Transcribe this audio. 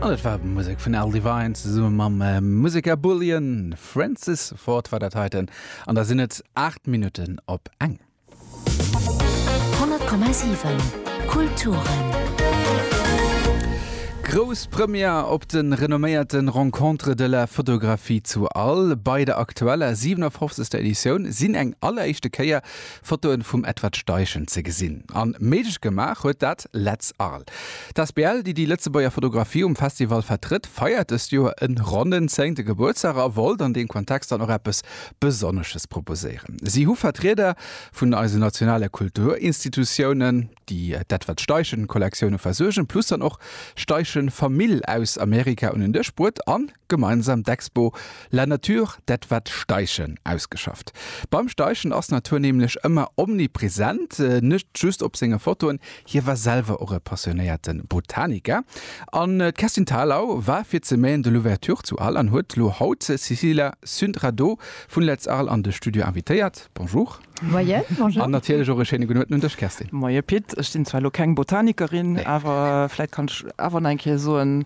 An dat war Musek vun Al Devine zesumme mam Museker Bullion. Francis Ford war dat heiten an da sinn et 8 Minutten op eng. 100,7 Kulturen. Grouss Première op de renomméierte Rencontres de la photographie zu All. Bei der aktueller 57. Editioun sinn eng alleréischte Kéier Fotoen vum Edward Steichen ze gesinn an méiglech gemaach huet dat Letz Arles. D'Asbl déi déi Lëtzebuerger Fotografie um Festival vertrëtt feiert dëst Joer en ronnen zéngte Gebuertsdag a wollt an deem Kontext dann och eppes Besonnesches proposéieren. Si hu Vertrieder vun eisen nationale Kulturinstitutiounen déi d'Edward Steichen Kollektioune versuergen plus dann och Steichen Famill aus Amerika un en Dësch bruet an Gemeinsam d'Expo La nature, dat wat Steichen ausgeschafft. Beim Steichen ass d'Natur nämlech ëmmer omnipräsent, net just op senge Fotoen. Hie war selwer och e passionéierte Botaniker. An d'Kerstin Thalau war fir ze Maine de l'Ouverture zu Arles an huet elo haut d'Cecilia Sündradow vun Let's Arles an de Studio invitéiert. Bonjour. Moien. Bonjour. An natierlech och e schéine gudden Uerten un dech Kerstin. Moie Pit, ech sinn zwar elo keng Botanikerin, awer vläit kann ech awer nach eng Kéier soen,